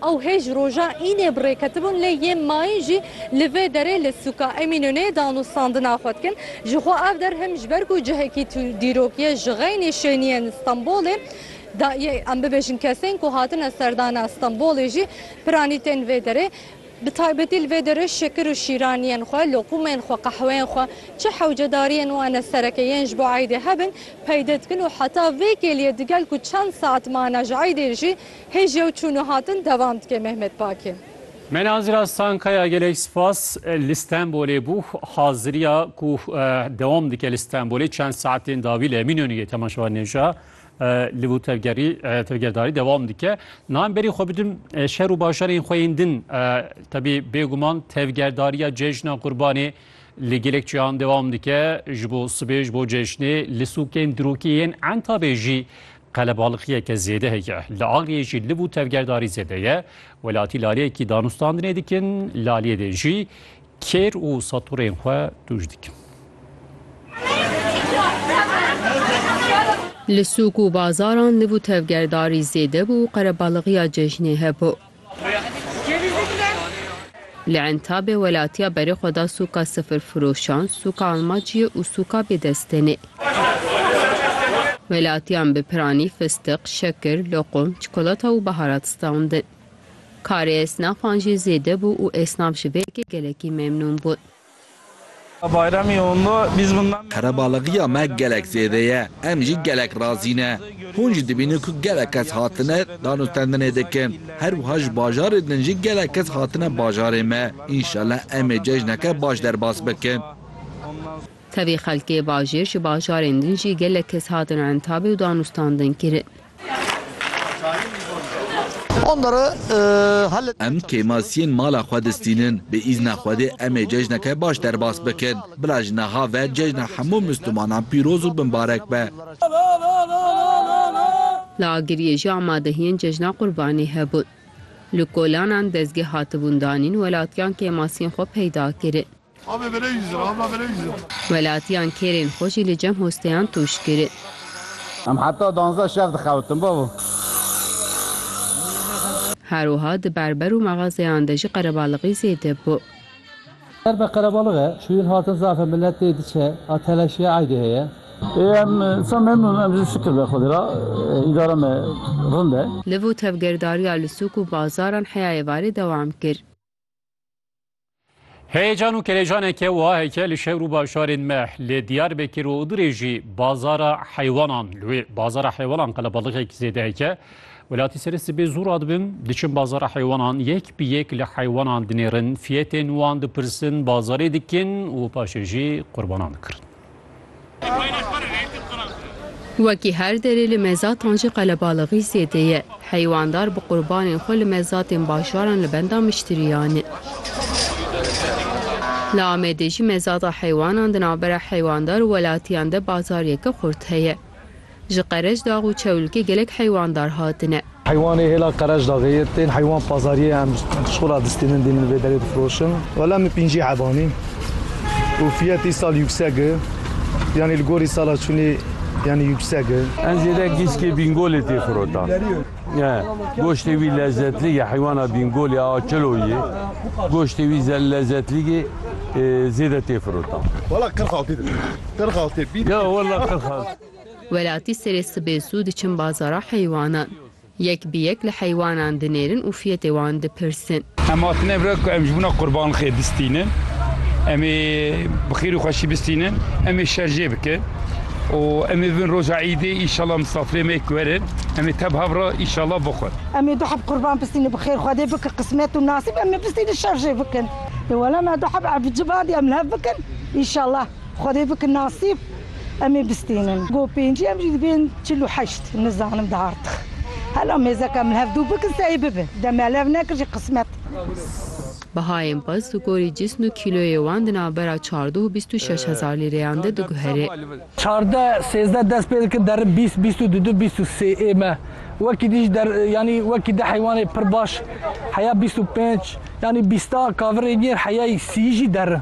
Ew hê ji roja Înê bi rê ketibûn lê yê mayîn jî li vê derê li sûka Emînûnê danûstandina xwe dikin. Jixwe ev der him ji ber ku cihekî dîrok ye ji xeynî şêniyên Stenbolê da yê em bibêjin kesên ku hatine serdana Stenbolê jî piranî tên vê derê. Bi taybetî li vê derê şekir û şîraniyên xwe, loqûmên xwe, qehweyên xwe çi hewcedariyên wan e sereke yên ji bo eydê hebin peyde dikin û heta vê kêliyê digel ku çend saet mane ji eydê jî Hê ji yew çûn û hatin devam dike Mehmet Pakê. Me Nazira Stankaya gelek spas li Stenbolê bû haziriya ku dewam dike li Stenbolê çend saetên dawî li Eminönüyê temaşevan nêja li bo tevgerî tevgerdarî dewam dike. Nan berî xwe bidim şer û bajarên xwe yên din tebî bêguman tevgerdariya cejna Qurbanê li gelek çiyan dewam dike ji bo sibê ji bo cejnê li sûkên dirokî yên Entabê jî Qelebalixiyeke zêde heye. Li Agiriyê jî liv û tevgerdarî zêde ye. Welatî laleyekî danûstandinê dikin, laliyê dê jî kêr û saturên xwe tûj dikin. Li sûk û bazaran liv û tevgerdarî zêde bû û qerebalixiya cejnê hebû. Li Entabê welatiya berê xwe da sûka sifirfiroşan, sûka almaciyê û sûka bêdestênê. Welatiyan bi piranî, fistiq, şekir, loqum, çikolata û biharat standin. Karê esnafan jî zêde bû û esnaf ji vê yekê gelekî memnûn bûn. Qerebalaxiya me gelek zêde ye, em jî gelek razî ne. Hûn jî dibînin ku gelek kes hatine danûstendinê dikin. Her wiha ji bajarê din jî gelek kes hatine bajarê me. Înşallah em ê cejneke baş derbas bikin. Tevî xelkê bajêr ji bajarên din jî gelek kes hatin entabê û danûstandin kirin. Em kêmasiyên mala xwe distînin. Bi îzna Xwedê em ê cejneke baş derbas bikin. Bila ji niha ve cejna hemû Mislûmanan pîroz û binbarek be. Li Agiriyê jî amadehiyên cejna Qurbanî hebûn. Li kolanan dezgeh hatibûn danîn, welatiyan kêmasiyên xwe peyda kirin. Welatiyan kêrên xwe jî li cem hosteyan tûj kirin. Em heta danzdeh şev dixewitin bavê. Her wiha di berber û mexazeyan de jî qerebalixî zêde bû. Ser be qerebalix e, çûyîn hatin zaf e, milet tê diçe, a telaşiya eydê heye. Ê em sa memnûn em jî şikir be Xwedê re, îdara me rind e. Li vir tevgerdariya li sûk û bazaran heya êvarê dewam kir. Heyecan û kelejaneke wiha heke li şehir û bajarên me li Diyarbekir û Idrê jî bazara heywanan li wê bazara heywanan qelebalixek zêde heke. Welatî serê sibê zû radibin diçin bazara heywanan yek bi yek li heywanan dinêrin fiyetên wan dipirsin bazarê dikin û paşê jî qurbanan dikirin. Wekî her derê li mezatan jî qelebalixî zêde ye. Heywandar bi qurbanên xwe li mezatên bajaran li benda miştiriyan e. Li Amedê jî mezata heywanan di navbera heywandar û welatiyan de bazaryeke xurt heye. Ji Qereçdax û Çewlikê gelek heywandar hatine. Heywanê hêla Qereçdaxê yê tên heywan pazariyê em şola distînin dînin vê derê difiroşin. Wela min pêncî heban e û fiyet îsal yûksek e yanî li gorî sala çûnê yanî yûksek e. Em zêde gîskê Bîngolê tê firotan. Goştê wî lezzetlî ye heywana Bîngolê a kilo yê goştê wî lezzetlî yê zêde tê firotan. Wela qirxaltê dibînim qirxaltê bî. Ya wela qirxaltê. Welatî serê sibê zû diçin bazara heywanan. Yek bi yek li heywanan dinêrin û fiyetê wan dipirsin. Em hatine vir ku em ji bona qurban xêr bistînin. Em ê bi xêr û xweşî bistînin. Em ê şer jê bikin û em ê bibin roja îdê înşallah misafirê me ku werin em ê teb hev re înşallah bixwin. Em ê du heb qurban bistînin bi xêr Xwedê bike qismet û nasîb em ê bistînin şer jê bikin. Wele me du heb ev civadê em li hev bikin înşallah. Xwedê bikin nasîb em ê bistînin. Go pêncî em jî dibên çil û heşt nizanim di artix. Hela mêzeke min hev dû bikin sey bibe. Dem em hev nekir jî qismet. Bihayên pirs di gorî cisn û kîloyê wan di navbera çardeh û bîst û şeş hezar lîreyan de diguhere. Çardeh, sêzdeh dest pê dikin derin bîst, bîst û du, du bîst û sê ê me. Wekî di jî der yanî wekî di heywanê pir baş heya bîst û pênc yanî bîsta kavirê nêr heyayî sîyî jî derin.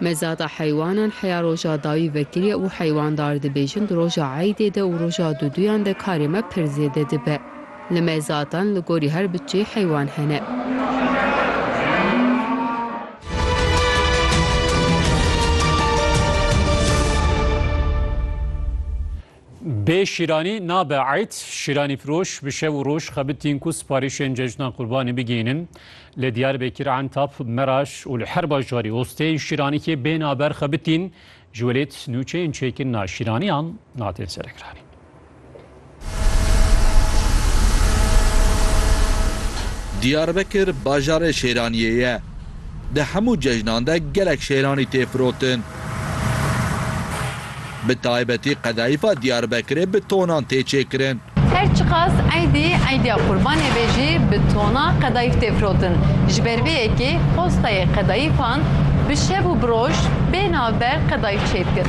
Mezata heywanan heya roja dawî vekirî û heywandar dibêjin di roja eydê de û roja duduyan de karê me pir zêde dibe. Li mezatan li gorî her biçeyê heywan hene. Bê şîranî nabe eyd, şîranîfiroş bi şev û roj xebitîn ku siparîşên cejna qurbanî bigihînin. Li Diyarbekir, Entap, Meraş û li her bajarî osteyên şîranîkê bên a ber xebitîn, ji welêt nûçeyên çêkirina şîraniyan hatên serekiranîn. Diyarbekir bajarê şêraniyê ye. Di hemû cejnan de gelek şêranî tê firotin. Bi taybetî qedayîfa Diyarbekirê bi tonan tê çêkirin. Her çiqas eydî eydiya qurbanê be jî bi tonan qedayîf tê firotin. Ji ber vê yekê postayê qedayîfan bi şev û bi roj bê navber qedayîf çêdikin.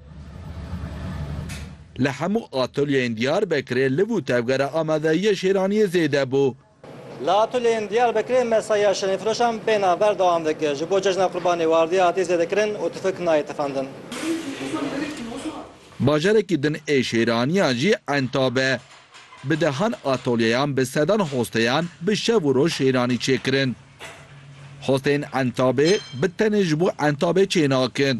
Li hemû atolyeyên Diyarbekirê liv û tevgera amadeyiyê şêraniyê zêde bû. Li atolyeyên Diyarbekirê mesaiya şirînfiroşan bê nav berdewam dike. Ji bo cejna Qurbanê wardiya hatiye zêdekirin û tifik nayê tifandin. Bajarekî din ê şêraniyan jî enta be. Bi dehan atolyeyan bi sedan hosteyan bi şev û roj şêranî çêkirin. Hosteyên entabê bi tenê ji bo entabê çênakin.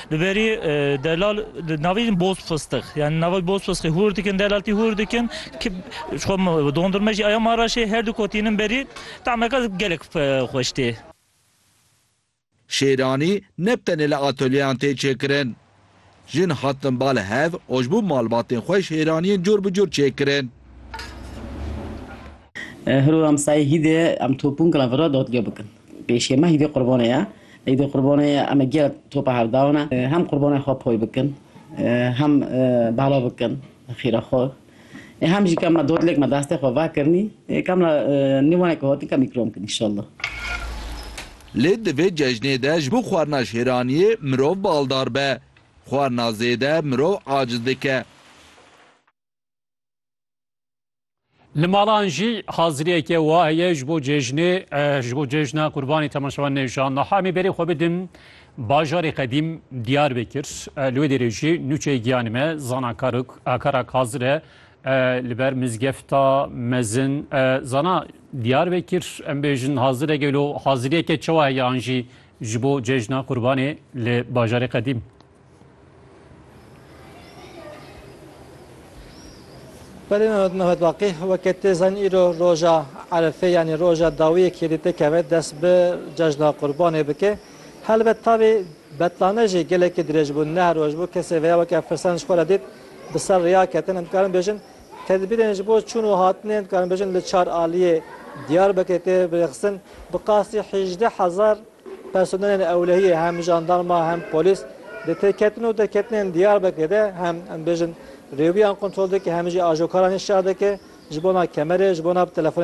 Li berî delal di navê jî boz fistix yanî nava boz fistixê hûr dikin delal tî hûr dikin ki ji xwe dondurme jî aya maraşê her du ku tînin berî temeke gelek xweş tê. Şêranî ne bi tenê li atölyeyên tê çêkirin. Jin hatin ba li hev û ji bo malbatên xwe şêraniyên cor bi cor çêkirin. Hiro em sayê hîdê em topûnkla vira dadgeh bikin. Pêşiya me Îdê Qurbanê ye. Îdê Qurbanê em ê gelek topa hev dawine. Hem qurbanên xwe poy bikin, hem bala bikin xîra xwe. Hem jî ka me dodlek me destê xwe vekirinî, ka me nêwaneke hatin ka me îkram kirin înşallah. Lê di vê cejnê de ji bo xwarina şêraniyê mirov baldar be. Xwarina zêde mirov aciz dike. Li malan jî haziriyeke wa heye ji bo cejnê ji bo cejna qurbanî temaşevan nêjan niha em ê berê xwe bidin bajarê qedîm diyar bikir li wê dêrê jî nûçeyê giyanê me zana karok akarak hazir e li ber mizgefta mezin zana diyar bikir em bêjin hazir e gelo haziriyeke çewa heye an jî ji bo cejna qurbanê li bajarê qedîm. Belê Mehmet Mehmet Baqî weke tê zanîn îro roja Erefê yanî roja dawiyê kêlî tê keve dest bi cejna qurbanê bike. Helbet tavê betlane jî gelekî dirêj bû neh roj bû kesê veya weke firsan ji xwe re dît bi ser riya ketin em dikarin bêjin tedbîrên ji bo çûn û hatinê em dikarin bêjin li çar aliyê Diyarbekirê tê birêxistin bi qasî hêjdeh hezar Personelên ewlehiyê hem jandarma hem polîs di têketin û derketinên Diyarbekirê de hem em bêjin rêwiyan kontrol dike hem jî ajokaranî şer dike ji bona kemerê, ji bona telefonê.